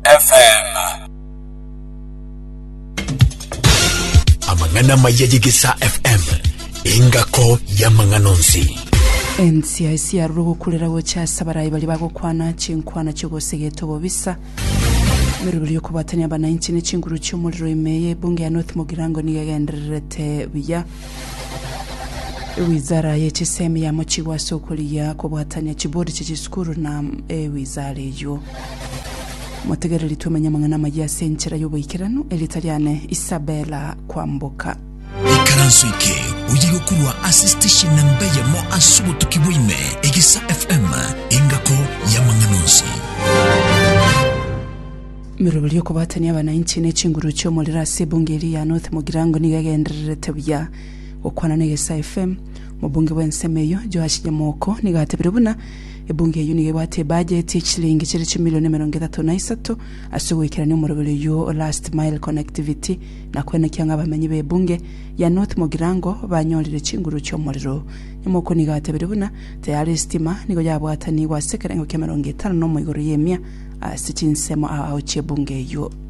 FM. Amang'ana maya y'Egesaa FM, engako y'amang'ana onsi. Ensia esiarure ogokurera gocha ase abarai baria bagokwana chinkwana chi'ogosegeta obobisa emeroberi y'okobwatania abanainchi ne chinguru chi'omorero ime eye ebunge ya North Mogirango nigo egendererete buya ewizara ye chisemi yamochigwa ase okorigia kobwatania chibodi chie chisukuru na ewizara eyio Motegereri twemenye amang'ana amayia ase enchera y'oboikeranu, erieta riane Isabella Kwamboka. Ikaranso eke oye gokorwa ase station namba eyemo ase obotuki bwa ime, Egisa FM, engako y'amang'ana onsi. Miroberi y'okobatania abanainchi ne chinguru chi'omorero ase ebunge eria ya North Mugirango nigo egendererete buya. Gokwana na Egesa FM, omobunge bw'ensemo eyio, Joash Nyamoko nigo atebire buna Ebungo eyio nigo ebwate ebudget ye chilingi chire chimilion emerongo etato na isato ase ogoikerania omoroberi oyio o last mile connectivity na koenekia ng'a abamenyi be Ebunge ya North Mogirango banyorire chinguru chi'omorero. Nyamoko nigo atebire buna tayari estima nigo yabwatanigwe ase ekerengo ki'emerongo etano na omo igoro y'emia ase chinsemo ao chi'ebungo eyio.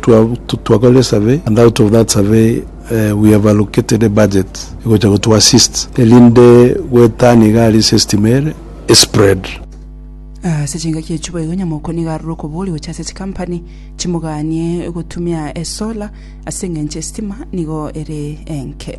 Twakore esurvey and out of that survey we have allocated ebudget egocha gotu assist erinde goetania iga aria ase estima ere espread. Ase chingaki echio boigo Nyamoko nigo arure okoboria gocha ase chikampani chimoganie gotumia esolar ase eng'encho estima nigo ere enke.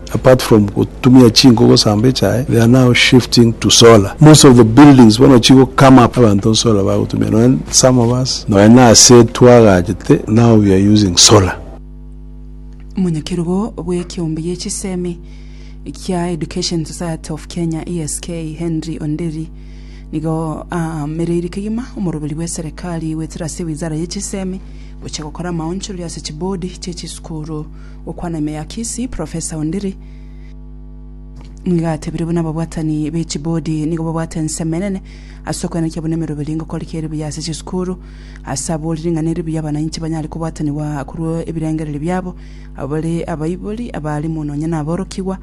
Apart from gotumia chinko gosamba echae, they are now shifting to solar. Most of the buildings bono chigo come up abanto solar bagotumia nonya some of us nonya nase twagachete now we are using solar. Omonyakerogo bw'ekeombe gie chisemi kia Education Society of Kenya, ESK, Henry Onderi nigo aamereiri kegima omoroberi bw'eserekari goetera ase ewizara ye chisemi gocha gokora amaonchorori ase chibodi chie chisukuru Okwana ime ya Kisii, Professor Ondiri nigo atebire buna ababwatani be chibodi nigo babwate ensemo enene ase okoenekia buna emeroberi eri ngokoreka eri buya ase chisukuru, ase aborire ng'a neri buya abananchi banyare kobwatanigwa korwa ebirengererio biabo, abo bare abaibori, abaalimu nonya naborokigwa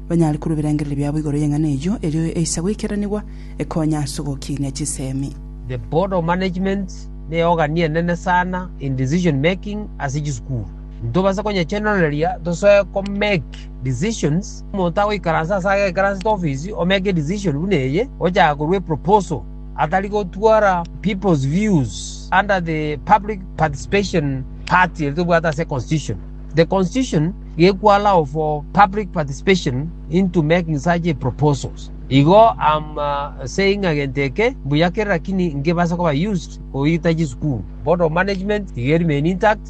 banyare korwa ebirengererio biabo igoro y'eng'ana eyio erio eisa goikeranigwa ekonya ase ogokiinia chisemi. The board of management neyogani enene sana in decision making ase chisukuru. Ntobase konyechenoreria tosoe ko make decisions, omonto agoikaransa ase agekaransete ofisi o make a decision buna eye, ochaka korwa a proposal atari gotwara people's views under the public participation part eri tobwate ase constitution. The constitution gekwo allow for public participation into making such a proposals. Igo am uh, saying agento eke mbuya kere lakini nkebase koba used koita chisukuru. Board of management iga eri main intact.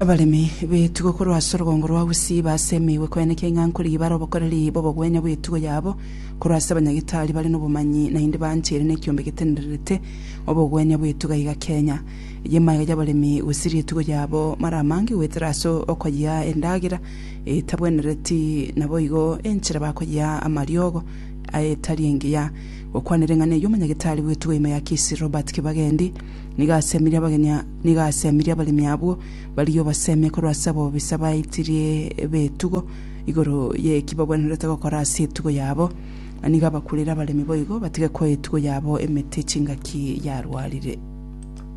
Abaremi b'etugo korwa ase orogongo rwa Gusii baase emeigwe koenekia ing'anko riibare obokoreri bw'obogwenia bw'etugo yabo korwa ase abanyagitari bare nobomanyi naende baancheire nekiombe getendererete obogwenia bw'etuga iga Kenya. Eyio emaiga y'abaremi gosiria etugo yabo mara amange goetera ase okoyia endagera etabwenereti naboigo enchera bakoyia amariogo etari engiya. Gokwanera eng'ana eyio omonyagitari bw'etugo ime ya Kisii Robert Kibagendi Nigo asemirie abageni a- nigo asemirie abaremi abwo, barie obasemie korwa ase abobisa baitirie b'etugo igoro y'eki bagwenerete gokora ase etugo yabo, na nigo abakurire abaremi boigo batige koa etugo yabo emete chingaki yarwarire.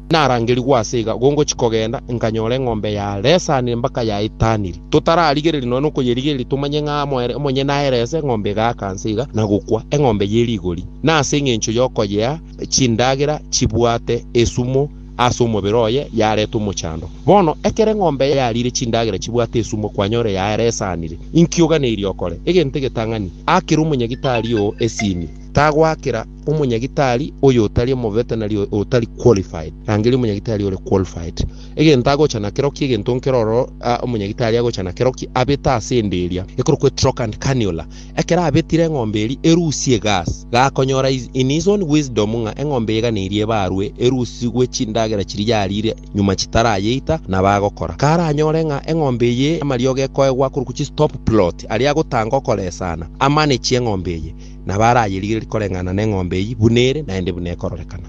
Narangerigwe ase iga, igo ngochia kogenda, nkanyora eng'ombe yaresanire mpaka yaitaniri. Totararigereria nonya nokoyerigereria tomanye ng'a moere, omonyene aerese, eng'ombe egaaka nse iga, na gokwa, eng'ombe ye rigori. Na ase engencho y'okoyea, chindagera chibwate esumu ase omobere oye, yareta omochando. Bono, ekero eng'ombe yariire chindagera chibwate esumu, kwanyora eyaeresanire. Inki oganeirie okore? Egento egetang'ani, akera omonyagitari oo esini. Tagoakera omonyagitari oyo otari omovetenari, otari qualified. Rangeria omonyagitari ore qualified. Egento agocha nakero ki? Egento nkero ororo, omonyagitari agocha nakero ki? Abete ase ende eria ekorokwa etroch and cannula, Ekero abetire eng'ombe eria erusia egaas, gakonyora is in his own wisdom ng'a eng'ombe eganeirie ebarwe erusi gwe chindagera chiria yariire nyuma chitarayeita na bagokora. Karanyore ng'a eng'ombe eye amariogo ekoegwa korwa chi stop plot aria agotanga okoresana, amanage eng'ombe eye, nabo arayerigererie koreng'ana neng'ombe eye buna ere naende buna ekororekana.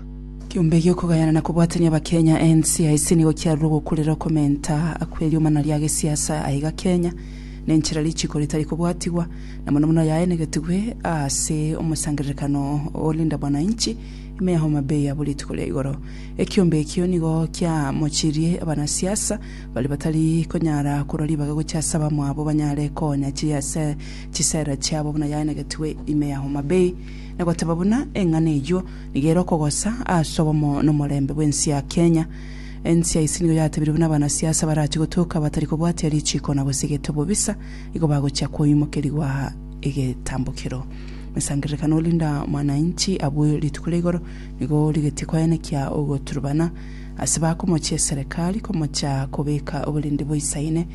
Kiombe egia okogayana na kobwatania Abakenya, NCIC, nigo kiarure ogokurera okomenta akw'eriomana ria gesiasa aiga Kenya. nenchera richiiko ritari kobwatigwa, na mono mono yaenegetigwe ase omosangererekano o Linda Mwananchi ime ya Homa Bay abwo rituko ria igoro. Ekiombe ekio nigo kiamochirie abanasiasa baria batari konyara korwa ribaga gochia ase abamwabo banyare koonya chiria ase chisera chiabo buna yaenegetigwe ime ya Homa Bay, na goteba buna eng'ana eyio nigo ere okogosa ase obomo nomorembe bw'ense ya Kenya. Ense ya ise nigo yatebirwe buna abanasiasa barachie gotoka batari kobwatia richiiko na gose egete obobisa, igo bagochia koimokerigwa egetambokero. Mesangererekano Linda Mwananchi abue rituko ria igoro nigo rigetie koenekia ogoturubana ase bakomochia eserekari komocha kobeka oborindi boisaine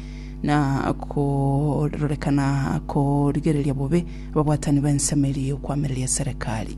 na kororekana korigereria bobe ababwatani b'ensemo eria y'okwamereria eserekari.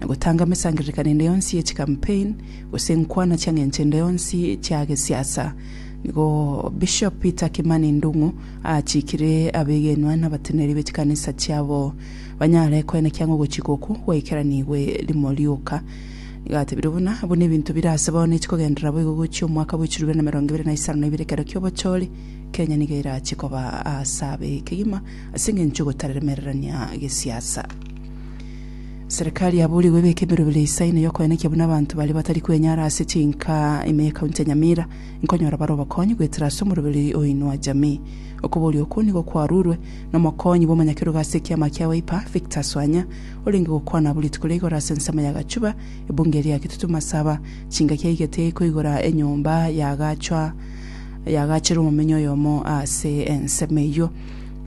na gotanga emesangererekano ende yonsi ye chikampeen, gose enkwana chia ng'encho ende yonsi chia gesiasa. Nigo Bishop Peter Kimani Ndung'u aachikire abegenwa na abateneneri be chikanisa chiabo banyare koenekea ng'a ogochika okwo gwaikeranigwe rimo rioka. Nigo atebire buna, buna ebinto bire ase bono echi kogenderera boigo gochia omwaka bw'echiro bibere na emerongo ebere na isano na ibere ekero ki'obochori, Kenya nigo erache koba ase abe kegima ase eng'encho y'ogotaremererania gesiasa. Serikali yaboorigwe ebeke emerobera ya Isaya ime y'okoenekia buna abanto baria batari kwenyara ase chinka ime ye county ya Nyamira inkonyora bare obokonyi goetera ase omoroberi oyo o Inua Jamii. Okobooria okwo nigo kwarurwe nomokonyi bw'omonyakerogo ase ekiama kia Wiper, Victor Swanya, orenge gokwana abwo rituko ria igoro ase ensemo ya Gachuba, ebunge eria ya Kitutu Masaba, chingaki aigete koigora enyomba yagaachwa yagaacherwa omomenyi oyomo ase ensemo eyio.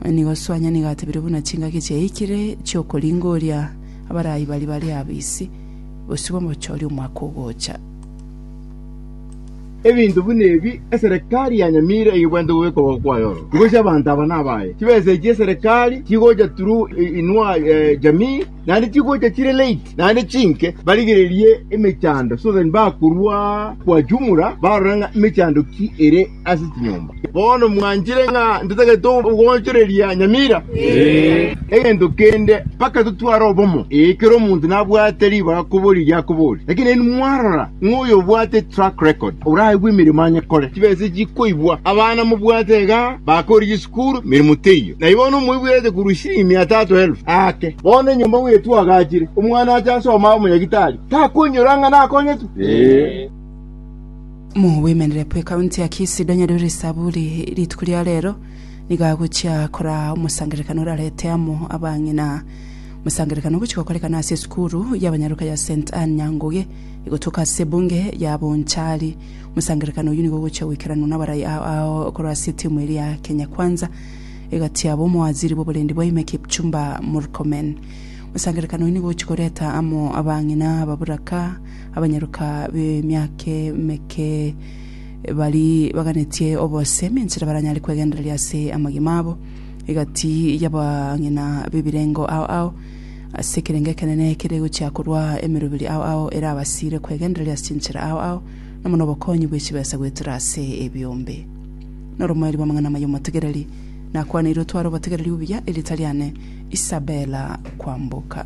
Nigo Suanya nigo atebire buna chingaki chiaikire chi'okoringoria abaraai baria bare abo isi bosio bw'omochori omwaka ogocha. Ebinto buna ebi eserekari yanyamire eyebwanete bobe kogoka kwaye oro. Igochi abanto aba nabaye. Chibesa echi eserekari chigocha through Inua Jamii naende chigocha chire late naende chinke barigererie emechando so that bakorwa kwa jumla barore ng'a emechando ki ere. ase chinyomba. Bono mwanchire ng'a ntatagete ogoonchoreria nyamira? Egento kende, mpaka totware obomo. Ee, kera omonto nabwate ribaga koboria erio akoboria. Lakini nainwe mwarora ng'a oyobwate track record oraigwe emeremo anyekore, chibesa echi chikoibwa. Abana mobwate iga bakoorire chisukuru, emeremo teiyo. Na igo bono moibuerete korwa chisiringi mia tatu elfu aake. Bono enyomba bw'etwagachire, omwana ache asome abe omonyagitari, takonyora ng'a nakonyetwe? Moboimerere bw'ekaunti ya Kisii donye rore esaburi rituko ria rero nigo agochia koraa omosangererekano orarete amo abang'ina. Omosangererekano ogochia gokorekana ase esukuru y'abanyaroka ya St Anne Nyanguge egotoka ase ebunge ya Bonchari. Omosangererekano oyio nigo ogochia goikeranwa nabarai ao korwa ase etimu eria ya Kenya Kwanza egatiabwa omowaziri bw'oborendi bwaime Kipchumba Murkomen. Omosangererekano oyio nigo ogochia koreta amo abang'ina, ababoraka, Abanyaroka b'emiaka emeke baria baganetie obosemi enchera baranyare kwegendereria ase amagima abo egati y'abang'ina b'ebirengo ao ao, ase ekerengo ekenene kere gochia korwa emeroberi ao ao erabasiire kwegendereria ase chinchera ao ao, na buna obokonyi bwe chibesa goetera ase ebiombe. Noromoerio bw'amang'ana amaya omotegereri, nakwaneire otware obotegereri obuya, erieta riane Isabella Kwamboka.